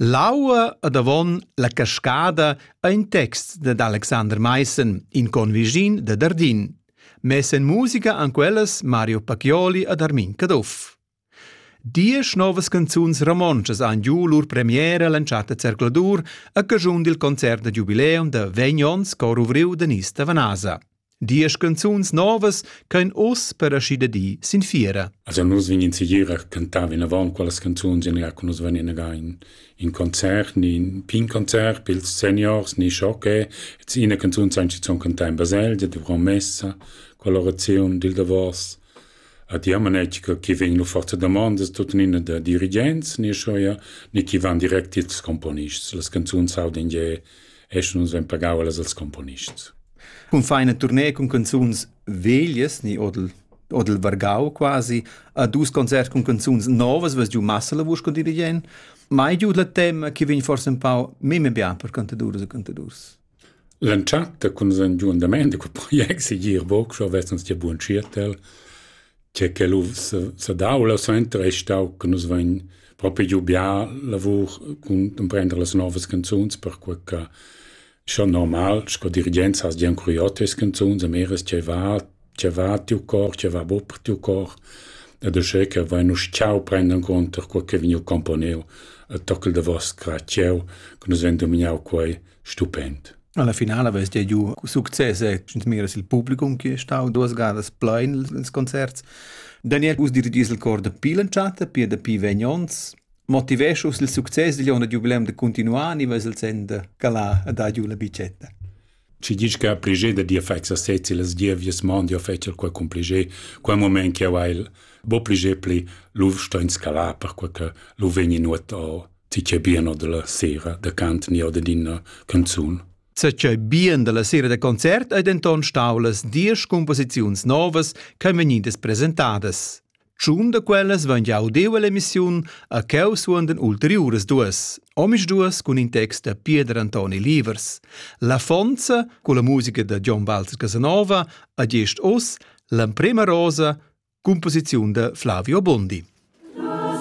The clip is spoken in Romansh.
L'aua ed avon la cascada ha in text dad Alexander Maissen, in convischin da Dardin. Mess en musica han quellas Mario Pacchioli ed Armin Caduff. Diesch novas canzuns romontschas han giu lur premiera l'entschatta zercladur a caschun dil concert da giubileum da vegn onns cor ovriu da Nis Tavanasa. Diesch canzuns novas ch'ein oz per aschi di sin fiera. Also nus vegnin segir a cantar vinavon quellas canzuns in che nus vegnin again in concert, ni in pin concert pils seniors, ni schoche, et ina canzun sein schon cantar in baselgia de promessa, colorazione dil Davos. A ti am che chi vegn lu forza domandas tuttenina da dirigents, ni schoia, ni chi van direct ils componists. Las canzuns hauden je esch nus vein pagau allas als componists. Cun feina tournée cun canzuns veglias ni odel odel vargau quasi a dus concerts cun canzuns novas was giu massa la vusch con dirigent mai giu la tema che vegn forse un pau meme bien per cantadurs e cantadurs L'entschatta cun san giu andament de quel project si gir boc schon vest uns dir buon cirtel tgei che lu sedau la suenter ei stau che nus vein propi giu bia lavur cun emprender las novas canzuns perquei che schon normal sco dirigent has gian curiot tes canzuns a meres ce va ce va tiu cor ce va bu per tiu cor ed uschè che vain uss ciao prenden conter quel che vegniu componeu e tockel de vos cra cieu che nus ven dominau quei stupend. Alla finala vess dia giu success e miras il publicum che è stau duas gadas plein ils concerts. Daniel us dirigis il cor da pi l'entschatta, pia da pi vegn ons, motiveschus il success digl onn da jubileum da continuar ni ves il sen da calar a da giu la bicetta. Ci dici che a prigé da dir fai sa sezzi las dievies mondi o fecel qua con prigé, quel moment che ha il bo prigé pli l'uv sto in scalà per quel che l'uv vegni nuot o Ti c'è bien o della sera da cant ni o d'ina canzun? Se c'è bien della sera da concert ei denton stau las diesch composiziuns novas ch'ein vegnidas presentadas. Tschun da quellas van jau deu all'emissiun a cheu suondan ulteriuras duas, omis duas cun in text da Pieder Antoni Livers. La fonza, con la musica da John Walter Casanova, a gest oss l'emprema rosa, composiziun da Flavio Bondi.